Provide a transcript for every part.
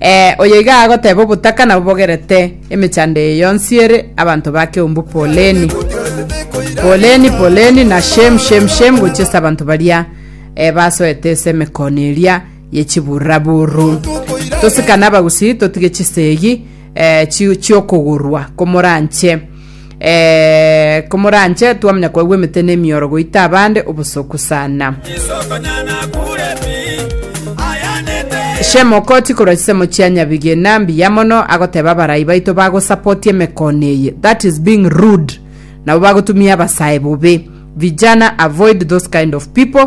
Ee, oyo iga agoteba obotaka nabobogerete emechando eye yonsi ere abanto ba keumbu Poleni, Poleni, Poleni, na Shem, Shem, Shem, gochia ase abanto baria eh, basoete ase emekono eria ye chiburaburu. Tosikane abagusii, totige chisegi eh, chi- chiokogurwa komoranche. eh, komoranche twamanya kwaigwa emete na emioro goita abande obosoku sana shemokoti korwa chisemo chia nyabigena mbiya mono agoteba abarai baito bagosapoti emekone eye that is being rude nabo bagotumia abasae bobe vijana avoid those kind of people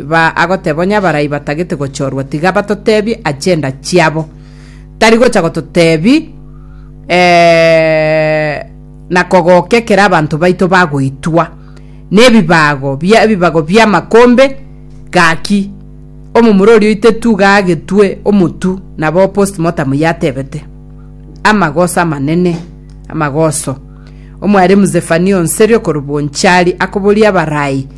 Iba agoteba onye abarai batagete gochorwa tiga batotebie ache enda chiabo. Tari gocha gototebi eh, na kogoka ekero abanto baito bagoitwa nebibago bia ebibago bi'amakombe gaki omomura oria oitetwe iga agetwe omotu nabo postmortem yatebete. Amagoso amanene, amagoso. Omwaremu Zefania onseria okorwa Bonchari akoboria abarai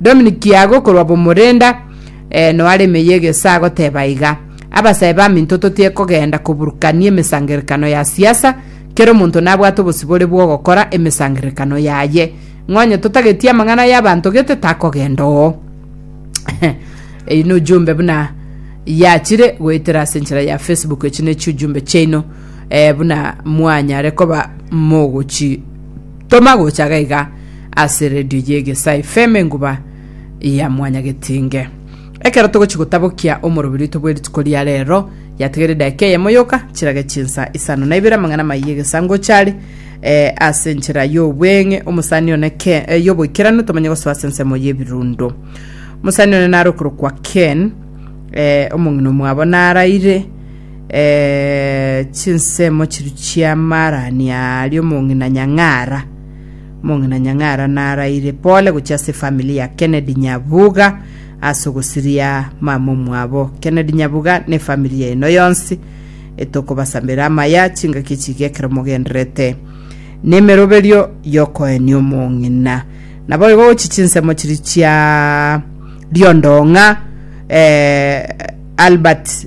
Dominic Kiago korwa Bomorenda eh, noare emeyio egesa agoteba iga, Abasae baminto totiye kogenda koburukania emesangerekano ya siasa, kera omonto nabwate obosibore bw'ogokora emesangerekano yaye. Ng'a onye totagetie amang'ana y'abanto gete takogenda oo. Eyi ni ujumbe buna yachire goetera ase enchera ya Facebook echi ne chiujumbe chiaino eh, buna mwanyare koba mogochi Toma gocha gaiga ase radio ye Gesai FM enguba ya mwanyagetinge. Ekero togochi gotabokia omoroberitwe bwe rituko ria rero, yatigere edaika eyemo yoka chirage chinsa isano na ibere amang'ana amayia egesango ochare eh, ase enchera y'obweng'e omosani one Ken, eh, y'oboikeranu tomanye gosoa ase ensemo y'ebirundo. Omosani one nare okorokwa Ken, eh, omong'ina omwabo naraire eh, chinsemo chiru chi'amaarani aria omong'ina Nyang'ara. Omong'ina Nyang'ara naraire pole gochia ase efamili ya Kennedy Nyabuga ase ogosiria mama omwabo. Kennedy Nyabuga na efamili yaino yonsi etokobasambera amaya chingaki echiga ekero mogenderete nemeroberio yokoenia omong'ina. Naboigo gochi chinsemo chiri chia Riondong'a eh, Albert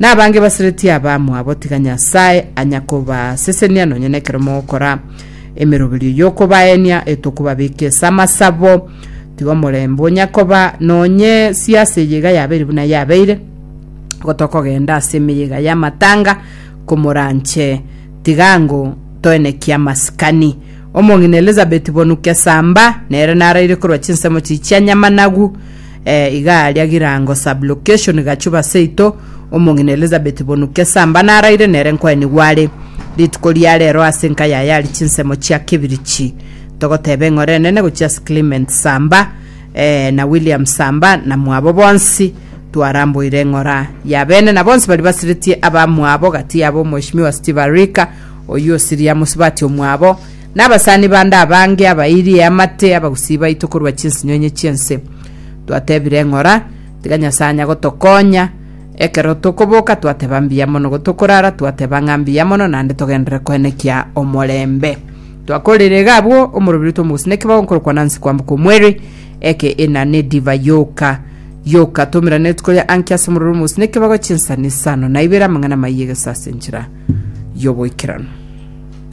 Nabange baseretie abamwabo tiga Nyasae anya kobasesenia nonya nekero mogokora emeroberio yokobaenia etokobabeka esa amasabo. Tiga omorembe onya koba nonye siase eyeiga yabeire buna yabeire gotokogenda ase emeyega y'amatanga komoranche tiga ango toenekie amasikani. Omong'ina Elizabeth bonu kesamba nere naraire korwa chinsemo chichia nyamanagu Eh, iga aria Girango sub-location Gachuba seito, omong'ina Elizabeth Bonu Kesamba naraire nere nkoenigwa are. Rituko ria rero ase nka yaye ari chinsemo chia Kibirichi. Togoteba eng'ora enene gochia ase Clement Samba eh, na William Samba na mwabo bonsi twaramboire eng'ora ya bene na bonsi bari basiretie abamwabo gati yabo Mweshimiwa Steve Arika oyio osiria mosubati omwabo Nabasani bande abange abairie amate abagusii baito korwa chinsinyoinyo chi'ense. Twatebire ng'ora, tiga Nyasae anya gotokonya. Ekero tokoboka twateba mbuya mono gotokorara twateba ng'a mbuya mono naende togenderere koenekia omorembe. Twakorire iga abwo omorobiri tw'omogusii nekibago nkorokwa Nancy kwamboka omweri eke ina nedivai yoka yoka tomerane rituko ria anki ase omorobiri omogusii nekibago chinsani isano naibere amang'ana amaiyo egesasenchera y'oboikeranu.